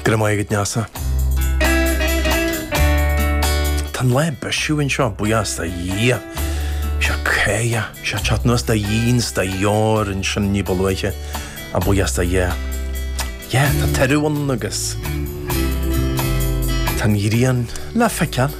Go raibh maith agat Neasa. Tá an lá ag bisiú anseo buíochas do Dhia. Sé ag cur, sé ag teacht anuas de dhíon 's de dheor ansin ní ba luaithe ach buíochas do Dhia. Yeah, tá turadh ann agus tá an ghrian le feiceáil.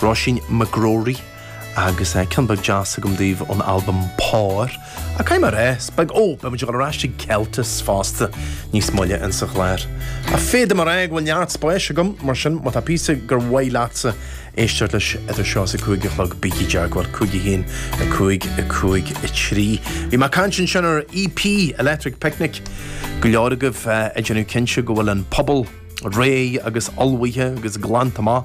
Róisín McGrory agus ceann beag deas agam daoibh ón albam Pár. Ach caithfidh mé a rá 's beidh, ó, beidh muid ag dul ar ais ag Celtes fosta níos moille insa gclár. Ach féadfaidh mé a rá go bhfuil neart spáis agam, mar sin má tá píosa gur mhaith leatsa éisteacht leis idir seo is a cúig a chlog bígí i dteagmháil, cúig a haon, a cúig, a cúig a trí. Bhí mé caint ansin ar EP Electric Picnic. Go leor agaibh ag déanamh cinnte go bhfuil an puball réidh agus ullmhaithe agus glanta amach.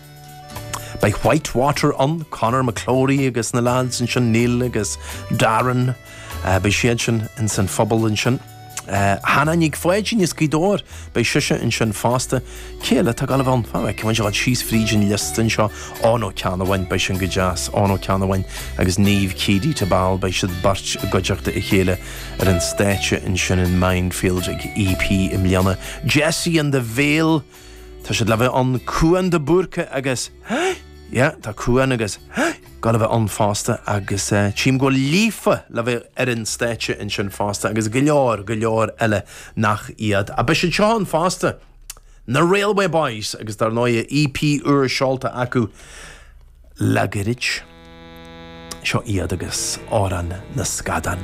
Beidh Whitewater ann, Conor McClory agus na lads ansin, Neil agus Darren, beidh siad sin ins an phuball ansin. Hannah Nic Pháidín as Gaoth Dobhair, beidh sise ansin fosta. Cé eile atá ag gabháil a bheith ann? All right, tá muid síos fríd an liosta anseo. Eoin Ó Ceannabháin, beidh sin go deas, Eoin Ó Ceannabháin agus Niamh Keady-Tabbal, beidh siad beirt i gcuideachta a chéile ar an stáitse ansin in Mindfield ag EP i mbliana. Jessie and the Veil. Tá siad le bheith ann Cuan de Búrca agus yeah tá Cuan agus gabháil a bheith ann fosta agus eh, tím go bhfuil Líofa le bheith ar an stáitse ansin fosta agus go leor go leor eile nach iad. A beidh siad seo ann fosta na Railway Boys agus dar ndóigh a EP úr seolta acu le gairid. Seo iad agus Amhrán na Scadán.